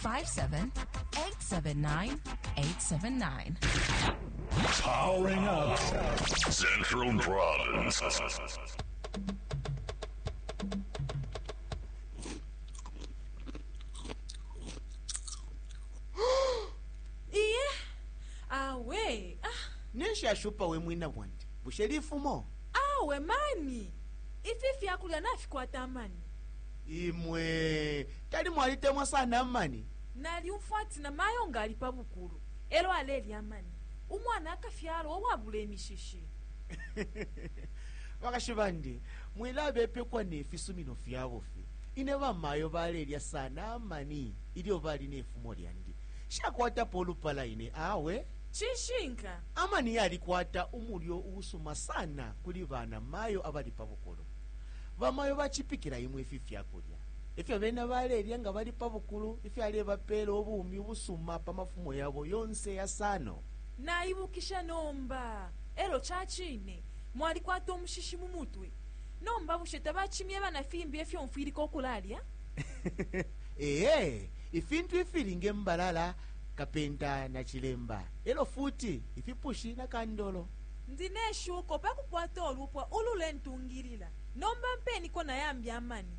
87879. Powering up Central Province. iye awe ah, ninshi ashupa we mwina bwandi bushe lifumo awe mani ifi fyakulya nafikwata amani Imwe tali mwalitemwa sana amani? Nalyumfwa ati na mayo nga ali pa bukulu elo alelya amani, umwana akafyalwa uwabula imishishi. Bakashi bandi, mwilabepekwa ne fisumino fya bufi. Ine bamayo balelya sana amani ilyo bali ne fumo lyandi. Nshakwatapo ulupala ine awe. Cishinka. Amani yalikwata umulyo uusuma sana kuli bana mayo abali pa bukulu. Bamayo bacipikila imwe ifi fya kulya, e fyo bena balelya nga bali pa bukulu, ifyalebapeela ubumi ubusuma pa mafumo yabo yonse yasano. Naibukisha nomba, e lyo ca cine mwalikwata umushishi mu mutwe. Nomba bushe tabacimyeba na fimbi ifyo mfwilika ukulalya? Ee, ifintu ifili nge mbalala, kapenta na cilemba, e lyo futi ifipushi na kandolo. Ndi ne shuko pa kukwata ulupwa ululentungilila. Nomba mpeniko na yambi amani.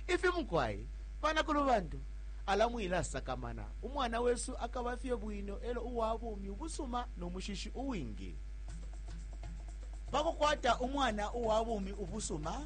Ifi mukwai, banakulu bantu, ala mwilasakamana. Umwana wesu akaba fye bwino elo uwa bumi ubusuma no mushishi uwingi. Pa kukwata umwana uwa bumi ubusuma,